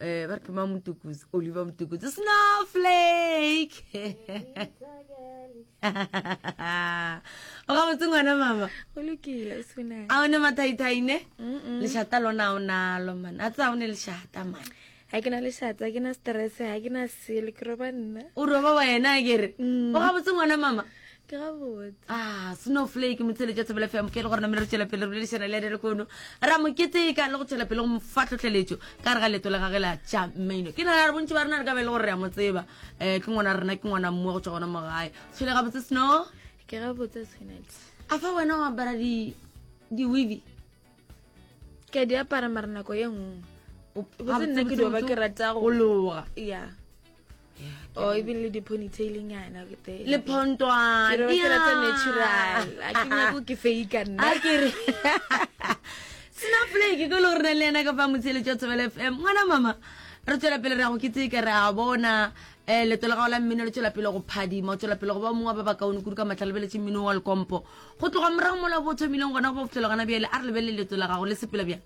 eh ba re ke mang motukuzi oliver motukuzi snowflake o ga botse ngwana mama go lokile sona a o ne mathaithai ne lešata lona o nalo man a tsa o ne lešata man ga ke na lešata ke na stress ga ke na selo ke roba nna o roba wena kere mm. o ga botse ngwana mama ke gabotse ah snowflake motshele tša sebele fm ke le gore namele re tšwela pele re boledišana le ene le kono ra mo keteka le go tšwela pele go mo fa tlhotlheletšo ka re ga leto le gage la tša maino ke nagana re bontši ba rena re ka be le gore re a mo tseba um ke ngwana rena ke ngwana mmoa go tswa gona mo gae tshwele ga botse snow ke gabotse swenet a fa wena o apara di-wevi ke a di apara mara nako ye nngwe botse nna ke dioba ke rata go loga ya or even le di-ponytailing yana le phontwanarata natural a ke nyako ke fake nna kere snowflake ko le gore na le ena ka fa motsheletso tshobela f m ngwana mama re tswela pele re ya go ke tsee ka re a bona um leto la gago la mmino le tswela pele go phadima o tswela pele go ba mongwe ba bakaone kudu ka matlhalebeletse mmino wa lekompo Go tloga morago mola bo thomileng gona go fihlela gona bjale a re lebelele leto la gago le sepela bjang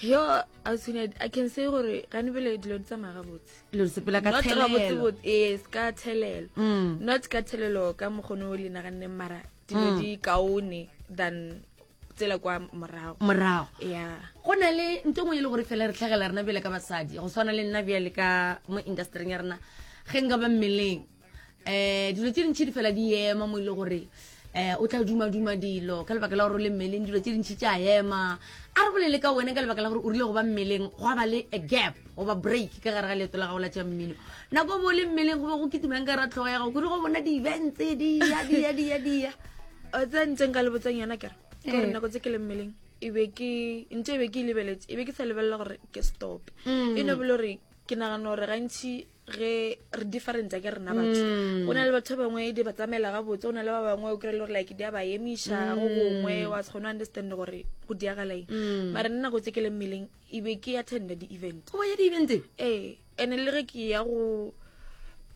yo ausine i can say gore gane bele dilo di tsamaya gabotse lo sepela ka thelelo yes ka thelelo mm. not ka thelelo ka mokgono o le naganne mara dilo mm. di kaone than tsela kwa morago morago ya go na le nto ngwe e le gore fela re tlhagela rena bjale ka basadi go tshwana le nna bjale ka mo industryng ya rena ge nka ba mmeleng um dilo tse dintšhi di fela di ema mo e le gore um o tla dumaduma dilo ka lebaka la gore o le mmeleng dilo tse dintšhi tša ema a re bolele ka wena ka lebaka la gore o rile go ba mmeleng go ba le a gap goba break ka gare ga leeto la gago la tša mmino nako bo le mmeleng go be go kitumang ka ra tlhogo ya gago kudu go bona di-event tse dia dia dia dia tse ntseng ka lebotsang yona kere gore nako tse ke le mmeleng e be ke ntho e be ke e lebeletse e be ke sa lebelela gore ke stop e ne bole gore ke nagana gore gantšhi ge re different ke rena batho mm. o na le batho ba bangwe di ba tsamaela ga botse o na le ba bangwe o kry-e le gore like di a ba emiša go mm. gongwe wa se kgone understand gore go diagalaeng mm. mare nna go tse ke le mmeleng ebe ke attenda di-event o ya di-event ee and le ge ke ya go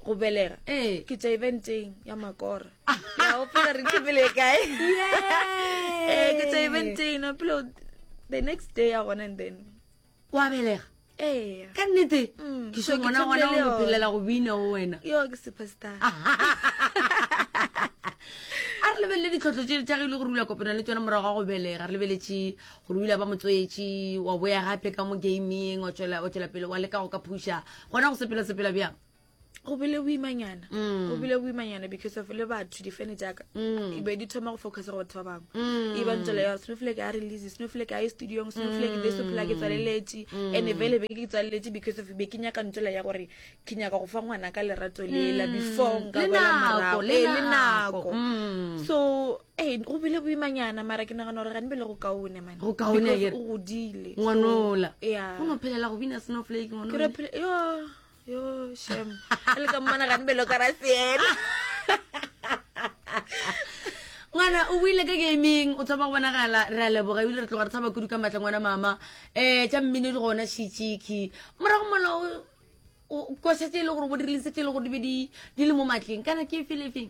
go belega ee. ke tswa eventeng ya makora ah. ya opela re thibele kae ee, ke tswa eventeng no pelo the next day ya gone and then o a belega ee ka nnete mm, ke so ngwana gona o phelela go bina o wena yo ke superstar a re lebelele ditlhotlho tse tsa gile go rula kopana le tsone morago ga go belega re lebeletse go rula ba motswetši wa boya gape ka mo gaming o tswela pele wa leka go ka phuša gona go sepela sepela bjang go bile boimanyana mm. go bile boimanyana because of le batho difene jaaka mm. e be di thoma go focus go batho ba bangwe mm. e ba ntsela ya snowflake a release snowflake a ye studiong snowflake be se phela ke tswaleletse and e vele be ke tswaleletse because of be ke nyaka ntsela ya gore ke nyaka go fa ngwana ka lerato lela before nka bola morago le e, nako so ee go bile boimanyana mara ke nagana gore gane bele go kaone mane go kaone o godile ngwanola ya go no phelela go bina snowflake ngwanola yo shem e le ka mmona gane belo ka rasiela ngwana o buile ka gaming o thoma go bonagala re a leboga ebile re tloga re thaba kudu ka maatla ngwana mama um tša mmino di gona shitšiki morago mola kosetse e le gore bo diriletse tse e le gore di be di le mo maatleng kana ke felefeng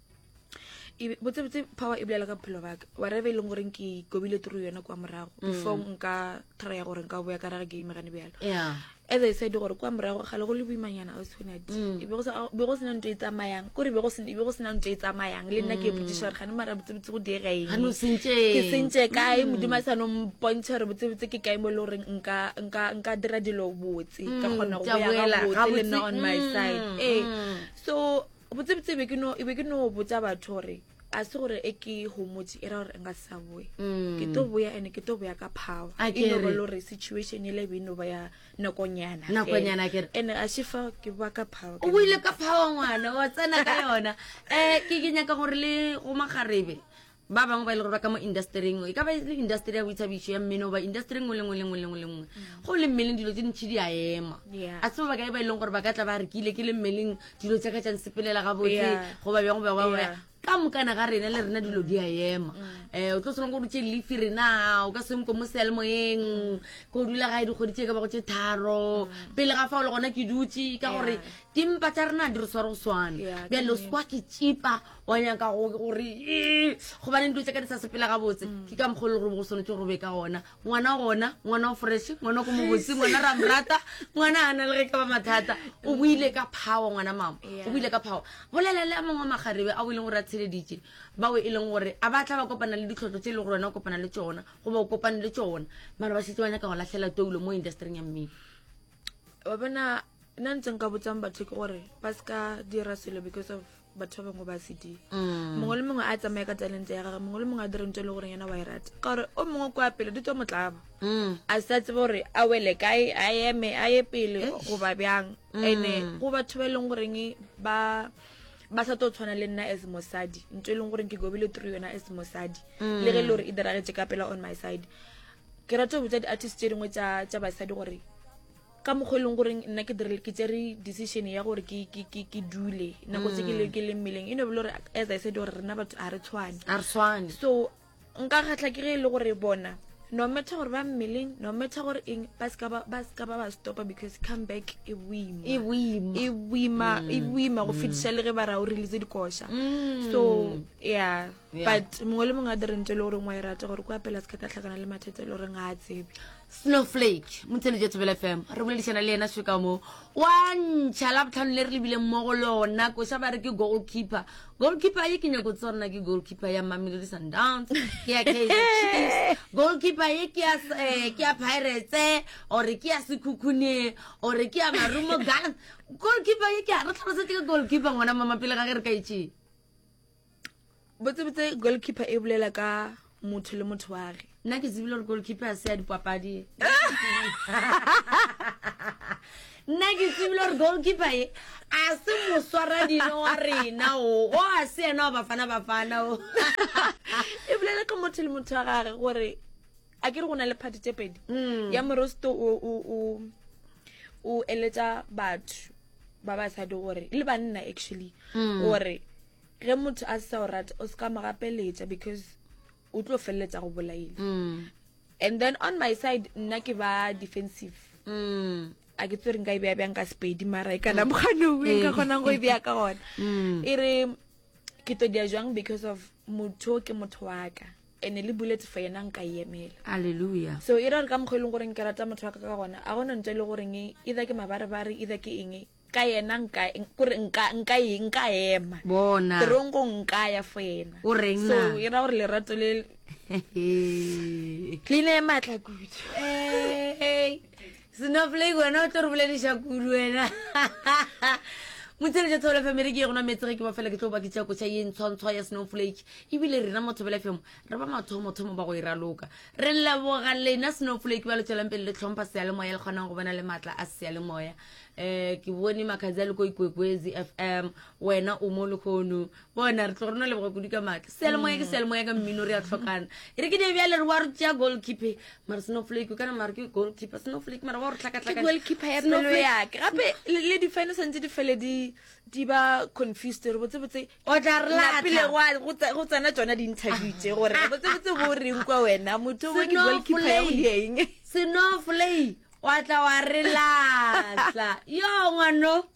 e botsebotse power e bolela ka bophelo baka whatever e leng gore ke kobile turu yone kwa morago mm. before nka trya gore nka boya ka rage ke imegane bjalo as i said gore kwa morago gale go le boimanyana o tshwanadi mm. e be go sena ntho e tsamayang kore be go sena ntho e tsamayang le nna ke e botsiša gore gane mara botsebotse go direengke sentse kae mm. modimo a sano mpontšha gore botsebotse ke kae mo e le goreng nka dira dilo botse ka mm, kgona go boya gabotse le nna on my side ee so botsebotse e be ke no botsa batho gore a se gore e ke homotse e ra gore nka sa boe mm. ke to boya ene ke to boya ka power e no ba lore situation ele be no ba ya nakonyana nakonyana ke ene a se fa ke ba ka power o boile ka power ngwana wa tsena ka yona eh ke ke nyaka gore le go magarebe Ba bangwe ba ile go ba ka mo indasteri engwe, e ka ba e le indasteri ya boithabišo, ya mmino, goba indasteri engwe le ngwe le ngwe le ngwe le ngwe. Go le mmeleng dilo tse ntšhi di a ema. A se ba bakae ba e leng gore ba ka tla ba re ke ile ke le mmeleng dilo tsa ka tša nsepelela gabotse goba bjang goba goba bjang. Ka mokana ga rena le rena dilo di a ema. Um o tlo tshwanang gore o tše leafe rena, o ka se nkwe mo sealemoyeng, ko dula gae dikgwedi tše e ka bago tše tharo. Pele ga fao le gona ke dutše ka gore dimpa tša rena ga di re sware go swana. Bjale o se kwa ke tšipa. wa nyaka gore ee gobaneng dilo tse ka di sa sepela gabotse mm. ke ka mokgolo gore go tshwanetse gore be ka ona ngwana gona ngwana o fresh ngwana ko mobotse ngwana ra morata ngwana a na le ge ka ba mathata o buile ka phawa ngwana mama o buile ka phawa bolela le a mangwe magarebe a o e leng gore a tsheleditse bao e leng gore a batla ba kopana le ditlhotlho tse e le gore wena o kopana le tsona goba o kopane le tsona mara ba setse ba nyaka go latlhela toulo mo industryng ya mmele wa bona nna ntse nka botsang batho ke gore ba se ka dira selo because of batho ba bangwe ba se dire mm. mongwe le mongwe a tsamaye ka talente ya gage mongwe le mongwe a dire ntho e le goreng yena wa e rata ka gore o mongwe kwa pele di tswa motlaba mm. a sa tsebe gore a wele kae a eme a ye pele eh. goba bjang mm. ene go batho ba e leng goreng ba ba sa tlo tshwana le nna as mosadi ntho e leng goreng ke gobile through yona as mosadi le ge e le gore e diragetse ka pela on my side ke rata go botsa di-artist tse dingwe tša basadi gore ka mokgwa e leng goreng nna ke direle ke tsere decision ya gore ke dule nako tse ke mm. le mmeleng e ne bole gore as i said gore rena batho ga re tshwane so nka kgatlha ke ge e le gore bona no matter gore ba mmeleng no matter gore eng ba seka ba ba stopa because come back e boima e boima e mm. go fetisa le ge ba ra o release dikoša mm. so yeah but mongwe le mongwe a direng tse le goreng wa e rata gore ko apela se ka ka tlhakana le mathata e le goreng ga a tsebe snowflake motshelo jwa tsebela fm re boledišana le yena seka mo wa ntšha la botlhano le re lebileng mo go lona koša ba re ke goal keeper goal keeper ye ke nyako tse rona ke goal keeper ya mamelodi sundowns ke ya kaizer goal keeper ye ke ya eh, ke ya pirates ore ke ya sekhukhune ore ke ya marumo gallants goal keeper ye ke ya re tlhalosetse ke goal keeper ngwana mama pele ga ge re ka itšee botsebotse goalkeeper e bolela ka motho le motho wa ge nna ke tsebile gore goalkeeper a se ya dipapadi nna ke tsebile gore goalkeeper e a se moswara dino wa rena o o a se yena wa bafana bafana o e bolela ka motho le motho wa gage gore a ke re go na le party tse pedi mm. ya morosto o eletsa batho ba basadi gore le banna actually mm. gore ge motho a sa o rata o se ka mo gapeletsa because o tlo feleletsa go bolaile mm. and then on my side nna ke ba defensive a ke tsere nka e beya bjang ka sepedi mara e kana moganong e nka eh. kgonang go e beya ka gona e re ke todia jwang because of motho ke motho wa ka ene le buletse for yena nka e emela alleluia so e ra re ka mokgwa e leng goreng ke rata motho wa ka ka gona a gona ntse e le goreng either ke mabarebare either ke eng ka yena nka kore nka nka e nka ema bona terong go nka ya fo yena o reng so e ra gore lerato le le ne matla kudu eh Snowflake wena o tlo re bolediša kudu wena motsheletša thobela fm e re ke ye gona metse ge ke ba fela ke tlo ba ke tšea kotšha ye ntshwantshwa ya snowflake ebile rena mo thobela fm re ba mathomothomo ba go e raloka re leboga lena snowflake ba le tswelang pele le tlhompha seyalemoya le kgonang go bona le maatla a seyalemoya um ke bone makgadzi a le ko ikwekwezi fm wena o mo lekgono bona re tlo rona leboga kudu ka maatla sealemoya ke mm. sealemoya ka mmino re a tlhokana e re ke ne bjale re wa re tsea goal keeper mara snowflake kana mara ke goal keeper snowflake mara wa re tlhakatlhakagoal keeper ya pelo yake gape le difine santse di fele di ba confused re botsebotse o tla re lapile go tsena tsona di-interview tse gore re botsebotse bo reng kwa wena motho o ke goal keeper ya o dieng snowflake wa tla wa re latlha yo ngwano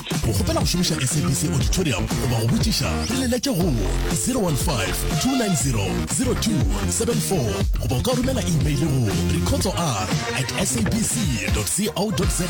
Go kgopela go šomiša SABC Auditorium goba go botšiša re le letše go 015-290-0274 goba o ka romela imeile go recordsor at sabc.co.za.